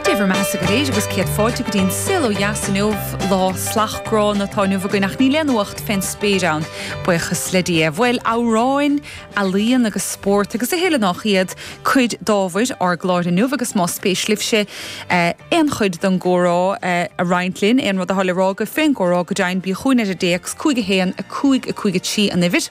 Dé bhur mbeathasa go léir agus céad fáilte go dtí an saol ó dheas inniu, lá salach gránna atá inniu againn ach níl aon uacht fén spéir ann, buíochas le Dia. Bhuel, amhráin, ealaíon agus spórt agus a chéile nách iad cuid d'ábhair ár gcláir inniu agus más spéis libhse aon chuid den gcomhrá a roinnt linn, aon rud atá le rá agaibh fén gcomhrá go deimhin, bíodh chugainn ar an dtéacs 51553 an uimhir.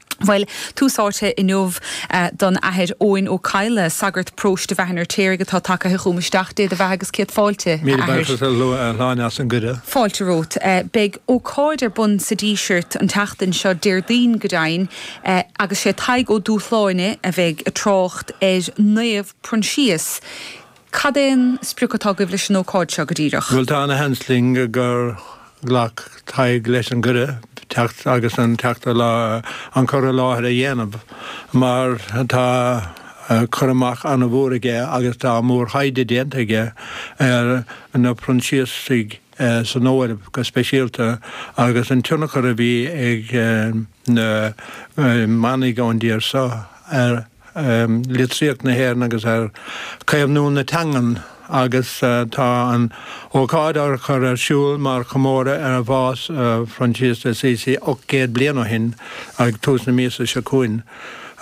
Bhuel, tús áite inniu don Athair Eoghan Ó Cadhla, sagart paróiste Bhaile an Fheirtéaraigh atá tagtha chugam isteach, Dé do bheatha agus céad fáilte, a Athair. Míle buíochas a Shláine as an gcuireadh. Fáilte romhat. Beidh ócáid ar bun sa Díseart an tseachtain seo, Déardaoin go deimhin, agus sé Tadhg Ó Dúshláine a bheidh ag trácht ar Naomh Proinsias, Cad é an sprioc atá agaibh leis an ócáid seo go díreach? Bhuel, tá ana sheans linn gur ghlac Tadhg leis an gcuireadh teacht agus an teachta an cur i láthair a dhéanamh mar tá cur amach ana mhór aige agus tá mór thaighde déanta aige ar na Proinsiasaigh san Eoraip go speisialta agus an tionchar a bhí ag na manaigh ón dtír seo ar litríocht na hÉireann agus ar chaomhnú na teangan agus tá an ócáid á chur ar siúl mar chomóradh ar bhás Phroinsias de Assisi 800 bliain ó shin ag tús na míosa seo chugainn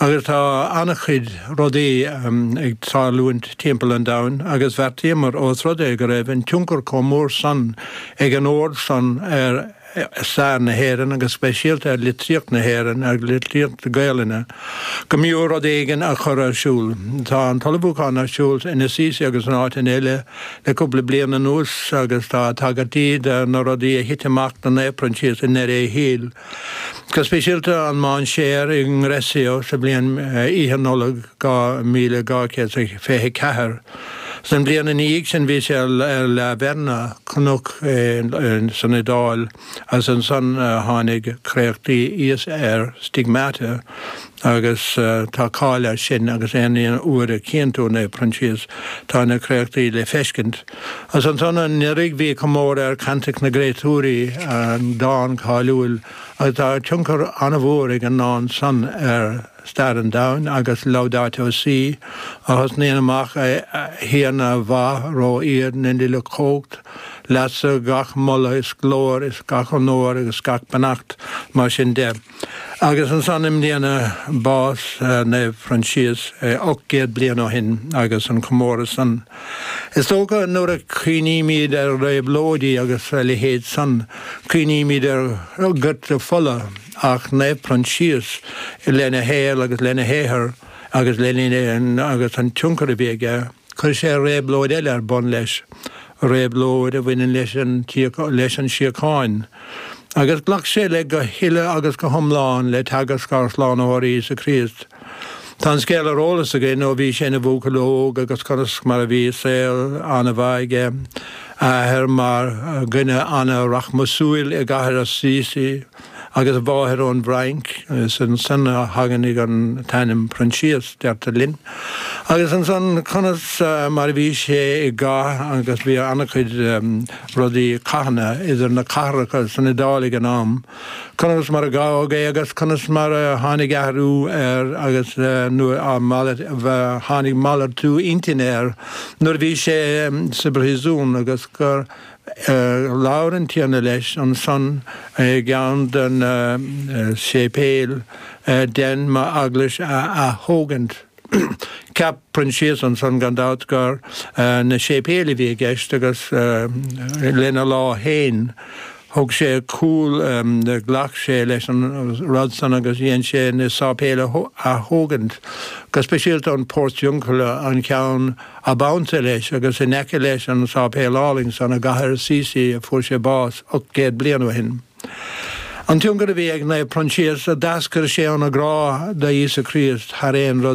agus tá an-chuid rudaí ag tarlúint timpeall an domhain agus bheartaíomar ós rud é go raibh an tionchar chomh mór san ag an Ord san ar stair na hÉireann agus speisialta ar litríocht na hÉireann, ar litríocht Gaelainne, go mb'fhiú rud éigin a chur ar siúl. Tá an t-ullmhúchán ar siúl in Assisi agus in áiteanna eile le cúpla bliain anuas agus tá tagairtí do na rudaí a thit amach do Naomh Proinsias i ndeireadh a shaoil, go speisialta an mainséar i nGreccio sa bhliain Oíche Nollag 2224. Sa mbliain ina dhiaidh sin bhí sé ar La Verna, cnoc san Iodáil, agus ansan tháinig créachtaí Íosa air, Stigmata, agus tá cáil air sin agus aon uair a chíonn tú Naomh Proinsias tá na créachtaí le feiscint. Agus ansan anuraidh bhí comóradh ar Caintic na gCréatúirí, an dán cáiliúil, agus tá tionchar an-mhór ag an ndán san ar Stair an Domhain agus Laudato Si', a thosnaíonn amach 'A Thiarna mhaith ró-ard na n-uile chumhacht, leatsa gach moladh is glóir is gach onóir agus gach beannacht', mar sin de. Agus ansan i mbliana bás Naomh Proinsias, ocht gcéad bliain ó shin agus an comóradh san. Is dócha nuair a chuimhnímid ar réabhlóidí agus a leithéid san, cuimhnímid ar dhortadh fola, ach Naomh Proinsias, lena shaol agus lena shaothar agus leis an tionchar a bhí aige, chuir sé réabhlóid eile ar bun leis, réabhlóid a bhaineann leis an tsíocháin, agus ghlac sé le go huile agus go hiomlán le teagasc ár Slánaitheora Íosa Críost. Tá an scéal ar eolas againn ó bhí sé ina bhuachaill óg agus conas mar a bhí saol an-mhaith aige, a athair mar dhuine an-rachmasúil i gCathair Assisi, agus a mháthair ón bhFrainc, is as san a thagann an t-ainm Proinsias, deirtear linn. Agus ansan, conas mar a bhí sé i gcath, agus bhí ana-chuid rudaí, cathanna, idir na cathracha san Iodáil ag an am, conas mar a gabhadh é agus conas mar a tháinig athrú air agus nuair a tháinig malartú intinne air nuair a bhí sé sa bpríosún agus gur Labhair an Tiarna leis ansan i gceann de na séipéil, Dein m'eaglais a aththógaint. Cheap Proinsias ansan gan dabht gur na séipéil a bhí i gceist agus lena lá féin thug sé cúl, ghlac sé leis an rud san agus dhein sé na sáipéil a aththógaint, go speisialta an Portiuncula, an ceann. Ab ansa leis agus in aice leis an sáipéal álainn san i gcathair Assisi a fuair sé bás ocht gcéad bliain ó shin. An tionchar a bhí ag Naomh Proinsias a d'eascair sé óna ghrá do Íosa Críost thar aon rud